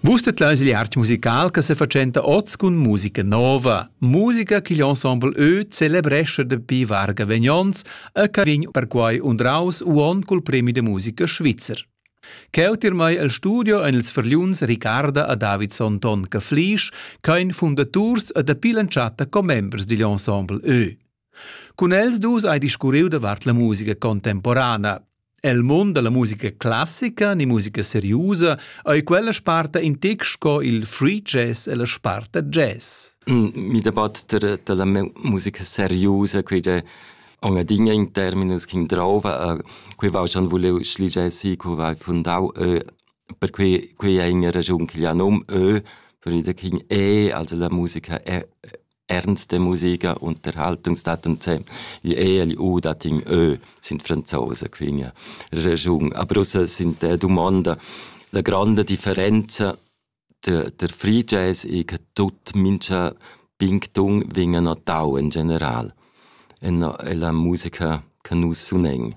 Vus tedlais il art musical che sefatschenta oz cun musica nova, musica ch'igl ensemble Ö celebrescha dapi varga vegnons e che vegn perquai undraus uon cul premi de musica svizzer. Cheu tirmai el studio ein ils verliuns Ricarda a David Sonton Caflisch, ch'ein fundaturs e dapi l'entschatta commembers digl ensemble Ö. Cun els dus hai discurriu davart la musica contemporana. El mund dalla musica classica ni musica seriusa ei quella sparta in tec sco il free jazz e la sparta jazz. Mm, mi debatter dalla musica seriusa quei de Ongadinha in terminus che drova, quei va schon voleu schlige si, co vai fundau ö, per quei quei è una ragion che gli nom ö, per ida king e, also la musica è Ernst de Musica Unterhaltungstatensem gli egl u dat in ö sind Franzose quingia regiun. A Brüssel sind äh, dumonda la granda differenza der, der Free Jazz e che tut mincha pinctung vegna notau in general en la musica che nus sunen.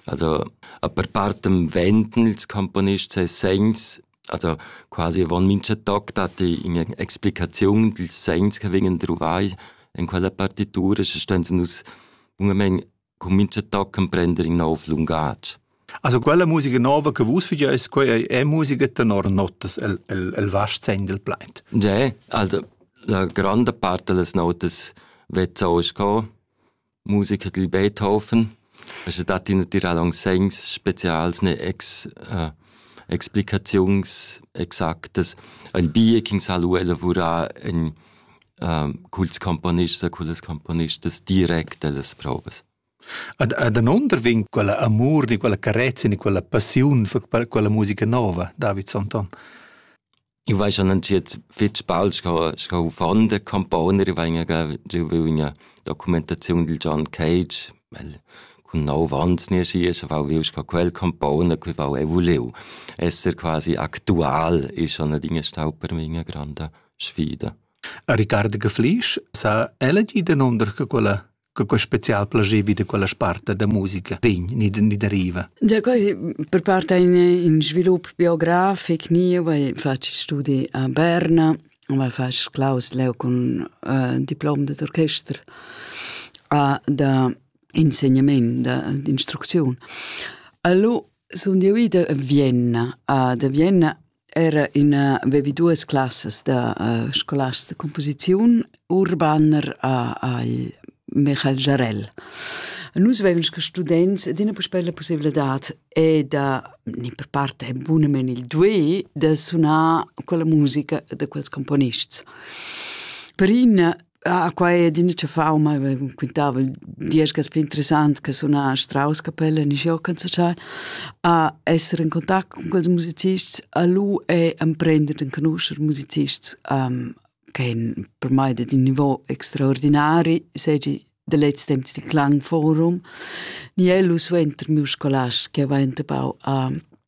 Also, a per partem venten ils componists e segns also quasi avon mincha toc datti ün'explicaziun dils segns che vegnan druvai in quella partitura, sche ston nus bunamain cun mincha toc emprender in nov lungatg. Also quella musica nova che vus fageis, quei ei, è musica tenor notas el, el, el vast segn del plaid. Ja, also la grande parte delle notas wird so scon musica dil Beethoven. Also dat i natira aunc segns specials ne ex, äh, explicaziuns exactas. Ein bie ch'in sa lu elavurar ein äh, culs componists e cullas componistas direct ellas provas. Ad, ad anonder vegn quella amur, ni quella carezia, ni quella passiun for quella musica nova, David Sonton. Ich weiß schon jetzt fitch bald scho scho von der Componer ich weiß ja so wie eine Dokumentation del John Cage weil kun no wanns nie sie ist aber will ich quel Componer que va e voleu esser quasi aktual ist schon eine Dinge staub per mir grande Sfide Ricardo Geflisch sa elegy den unter quella che quei special plager vi da quella sparta da musica vegn ni, ni deriva? Da quei per part ein in svilup biografic ni, weil faccio studi a Berna, weil fas Klaus leu con uh, diplom d'orchester a da insegnament, da d'instruzione. Allora sono io ida a Vienna, a da Vienna era ina vevi duas classas da uh, scolars de composiziun urbaner a al Michael Jarell. Nus vevens che students d'ina puspei la possibilità e da ni per parte è bunamen il due da sunar con la musica de quels componists. Per in Ah, quai è d'üna fauma, quintava diesch cas più interessant che suna a Strauss-Kapelle, in Jokenzachal, a essere in contact con quels musicists, a lu e emprender den conoscer musicists um, che per mai di un niveau extraordinari, segi de letz temps di Klangforum. Ni elu suenter miu scolast che aveva entepau a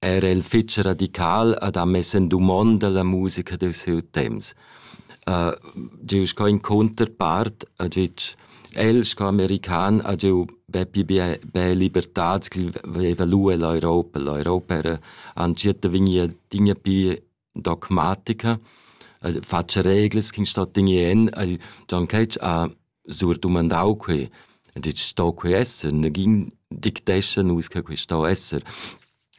Era il fetg radical ha da mess en dumonda la musica dil siu temps. Giu sco in counterpart ha gitg, el sco american ha giu bepi bia bia libertads ch'el veva lu ell'Europa. L'Europa era entschiet da vegnir adina pli dogmatica, el fatscha reglas ch'ün sto tigner en. El Gian Ketsch ha surdumandau quei, ha detg sto quei esser, negin dictescha nus che quei sto esser.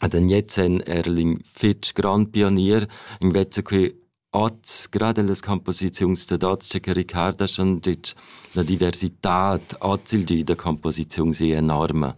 Ed en jetzt en Erling fitg grand pionier, invece quei oz, gerade las composiziuns dad oz, che Ricard ha schon detg, la diversità oz il di da composiziun è enorme.